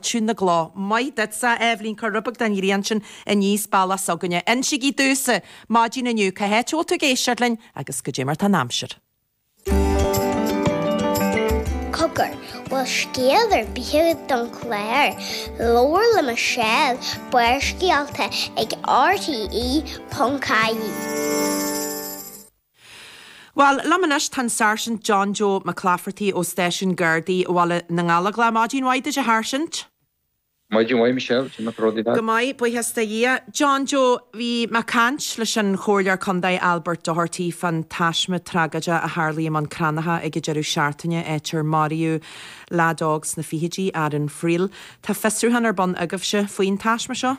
Chun na gcló. Maith duit, a Eibhlín, cuir rud beag den ghrian sin aníos bealach s'againne? Insígí domhsa! Maidin inniu, cá háit a bhfuil tú ag éisteacht linn agus goidé mar tá an aimsir? Cogar, bhfuil scéal ar bith agat don chlár? Labhair le Michelle, Barrscéalta ag RTÉ.ie. Bhuel, liom anois tá an Sáirsint John Joe Mac Laifeartaigh ó Stáisiún Gardaí Bhaile na nGallóglach, maidin mhaith duit a Sháirsint. Maidin mhaith Michelle, cén nach raibh Go maith, buíochas le Dia. John Joe, bhí mé ag caint leis an Chomhairleoir Contae Albert Doherty fán taisme tragóideach a tharlaigh i mBun Cranncha ag an deireadh seachtaine, áit ar maraíodh leaid óg sna fichidí, Aaron Friel. Tá fiosrúchán ar bun agaibhse faoin taisme seo?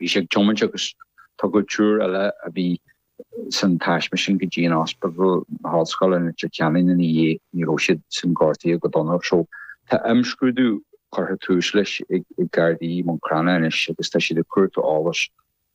Bhí sé ag tiomáint agus tugadh triúr eile a bhí san taisme sin go dtí an Ospidéal na hOllscoile in Leitir Ceanainn ina dhiaidh. Ní raibh siad sin gortaithe go dona. So tá imscrúdú curtha tús leis ag Gardaí Bhun Cranncha anois agus tá siad ag cuartú eolais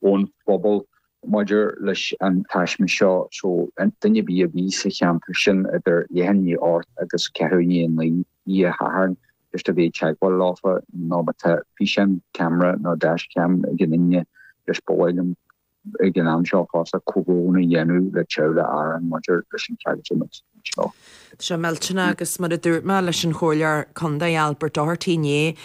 ón phobal maidir leis an taisme seo. So aon duine ar bith a bhí sa cheantar sin idir leath i ndiaidh a hocht agus ceathrú i ndiaidh a naoi oíche Shathairn. Ceist a bheith i dteagmháil leofa nó má tá físeán ceamara nó dash-cam ag aon duine leis ba mhaith liom ag an am seo fosta comhbhrón a dhéanamh le teaghlach Aaron maidir leis an tragóid seo. Tá sé millteanach agus mar a dúirt mé leis an Chomhairleoir Contae Albert Doherty inné,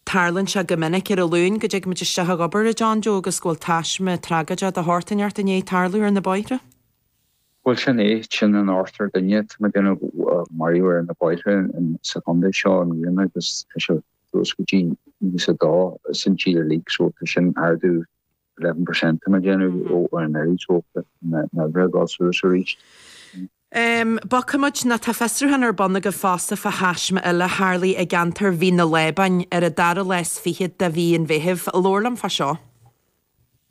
tarlaíonn sé go minic ar an Luan go dtig muid isteach ag obair a John Joe agus go bhfuil taisme tragóideach de shórt ineacht i ndiaidh tarlú ar na bóithre. Bhuel, sin é. Sin an ochtar duine, tá mé ag déanamh a maraíodh ar na bóithre sa chontae seo i mbliana agus tá sé suas go dtí nócha dó san tír uilig so tá sin ardú eleven percent tá mé ag déanamh ó anuraidh so tá na huimhreacha ag dul suas arís. Em, bogfaidh muid ná tá fiosrúchán ar bun agaibh fosta fá thaisme eile a tharlaigh i gceantar Mhín na Lábáin ar an dara lá is fichead de mhí an Mheithimh. Labhair liom fá seo.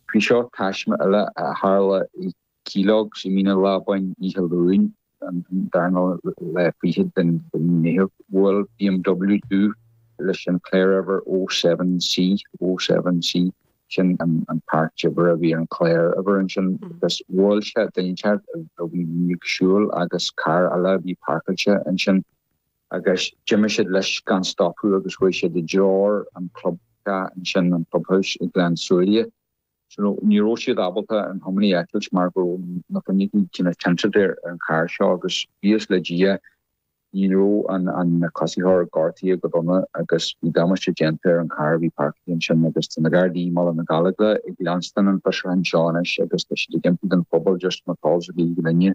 OK, seo taisme eile a tharla i Keelogs i Mín na Lábáin oíche Luain an darna lá fichead den mhí Meitheamh. Bhuail BMW dubh leis an cláruimhir 07 C, 07 C, sin an páirt uimhir a bhí ar an cláruimhir ansin, agus bhuail sé duine ineacht a bhí ag siúl agus carr eile a bhí páirceáilte ansin. Agus d'imigh siad leis gan stopadh agus chuaigh siad i dtreor an chlubtheach ansin, an Clubhouse i nGleann tSúilí. Ní raibh siad ábalta an tiománaí a fheiceáilt mar go raibh na fuinneoga cineál tinteáilte ar an charr seo agus buíochas le Dia ní raibh an coisitheoir gortaithe go dona agus bhí damáiste déanta ar an charr a bhí páircithe ansin agus tá na Gardaí i mBaile na nGallóglach ag leanstaint an fiosrúcháin seo anois agus tá siad ag impí don phobal just má tá eolas ar bith ag duine.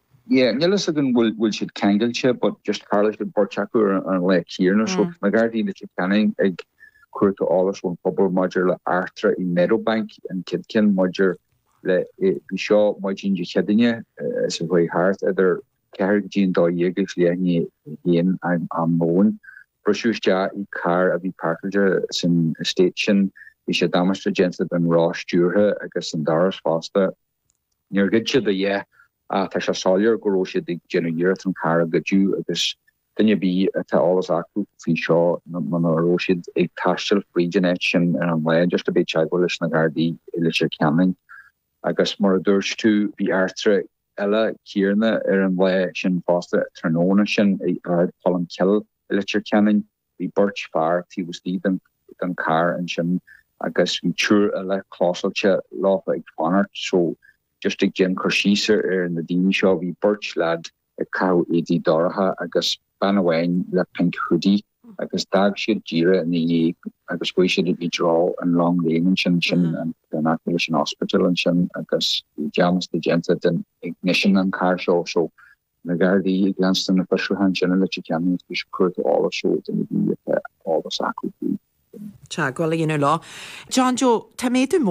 Yeah nil fhios againn an bhfuil siad ceangailte but just tharla an bheirt acu ar an lae céanna so Mm. na Gardaí i Leitir Ceanainn ag cuartú eolas ón phobal maidir le eachtra i Meadowbank an chéad cheann maidir le i bhí seo maidin Dé Céadaoine eh, sa chaoi thart idir ceathrú go dtí a dó dhéag is leath i ndiaidh a haon am am lóin briseadh isteach i carr a bhí páirceáilte san estate sin bhí sé damáiste déanta don roth stiúrtha agus an doras fosta Níor goideadh a dhath ach tá sé soiléir go raibh siad ag déanamh iarracht an carr a ghoid agus duine ar bith a tá eolas acu faoi seo nó má bhí siad ag taisteal fríd an áit sin ar an lá iarrtar orthu a bheith i dteagmháil leis na Gardaí i Leitir Ceanainn agus mar a dúirt tú bhí eachtra eile Ciarán ar an lá sin fosta tráthnóna sin i Ard Cholmcille i Leitir Ceanainn. Bhí beirt fear taobh istigh den charr ansin agus bhí triúr eile cóngarach leo ag fanacht so just ag déanamh cur síos ar na daoine seo bhí beirt leaid ag caitheamh éadaí dorcha agus bean amháin le pink hoodie agus d'fhág siad díreadh ina dhiaidh agus chuaigh siad i dtreo an long lane ansin sin in aice leis an ospidéal ansin agus bhí damáiste déanta don ignition an carr seo so na Gardaí ag leanstan na fiosrúcháin sin i Leitir Ceanainn agus ag cuartú eolais ó na daoine atá eolas acu faoi. teagmháil a dhéanamh leo. John Joe, tá méadú mór.